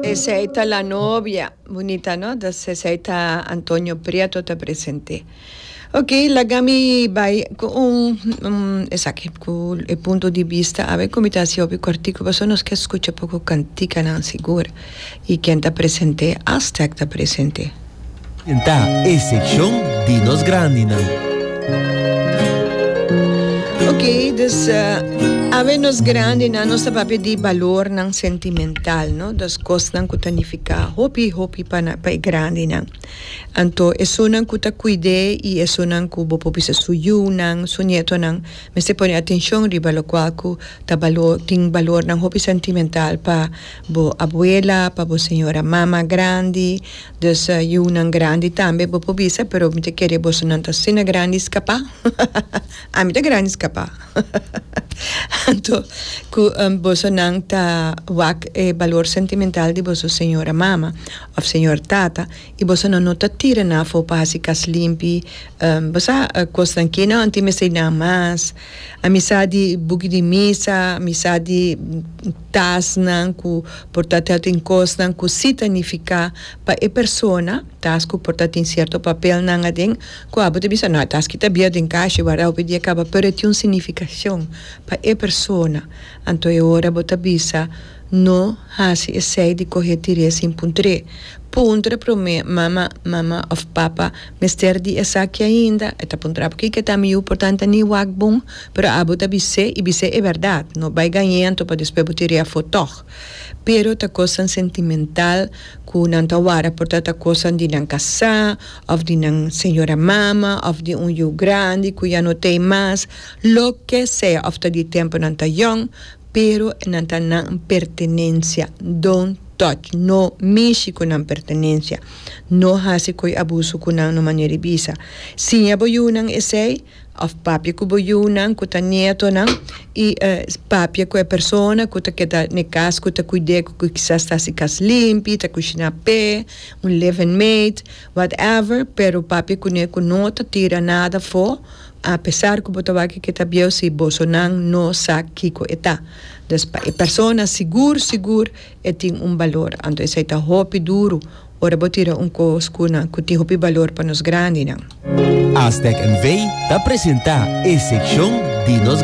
Esei ta la novia. Bunita no? Das esei ta Antonio Prieto ta present'é. Ok, laga mi bai cu un esaki, cu e punto di bista a ver cu mi ta haci hopi cortico pasobra nos ke scucha poco canticanan sigur. Y ken ta present'é? Aztec ta present'é. Ta e seccion di nos grandi nan. Ok dus awe nos grandi nan nos ta papia di balor nan sentimental no dos cos nan cu ta nifica hopi hopi pa nan pa e grandi nan anto esunnan cu ta cuide y esunnan cu bo por bisa su yu nan su nieto nan mester pone atencion riba locual cu ta balor tin balor nan hopi sentimental pa bo abuela pa bo señora mama grandi. Dus yunan grandi tambe bo por bisa pero mi ta kere bosonan ta asina grandi skapa ami ta grandi skapa anto ku bosonan ta wak e balor sentimental di boso señora mama of señor tata y bosonan no ta tira nan afo pa hasi kas limpi bo sa kosnan kina anto y mester nan mas Amisá di buki di misa, amisá di tasnan ku por ta sèrto kosnan ku si ta nifiká pa e persona, tas ku por ta tin sierto papelnan aden ku abo ta bisa nau tas ki ta bier den kashi wardá hopi dia kaba pero e tin un signifikashon pa e persona anto e ora bo ta bisa. No hasi esei di cohe tiré sin puntré. Puntra prome, Mama, Mama of Papa mester di esaki ainda? E ta puntra p'ki ke ta miu por tanta ni wak bon, pero abo ta bisé i bisé e berdad. No bai gañento pa despues bo tiré afó tog. Pero ta cosnan sentimental cu nan ta wara por ta ta cosnan di nan casá of di nan señora mama of di un yiu grandi cu ya no t'ei mas. Loke sea of ta di tempo nan ta yong. Pero nan ta nan pertenencia, don't touch, no mishi cu nan pertenencia, no haci coy abuso cu nan no manera y bisa, siña bo yunan esey, of papia cu bo yunan cu ta nietonan y papia cu e persona cu ta keda n'e cas cu ta cuid'e cu kisas ta haci cas limpi, ta cushina p'e, un living mate. Whatever, pero papia cune cu no ta tira nada fo, a pesar cu bo ta wak kico e ta bieu si bosonan no sa kico e ta. Dus pa e persona sigur sigur e tin un balor, anto esey ta hopi duro ora bo tira un cos cu na cu tin hopi balor pa nos grandinan. Aztec NV ta presenta e seccion di nos.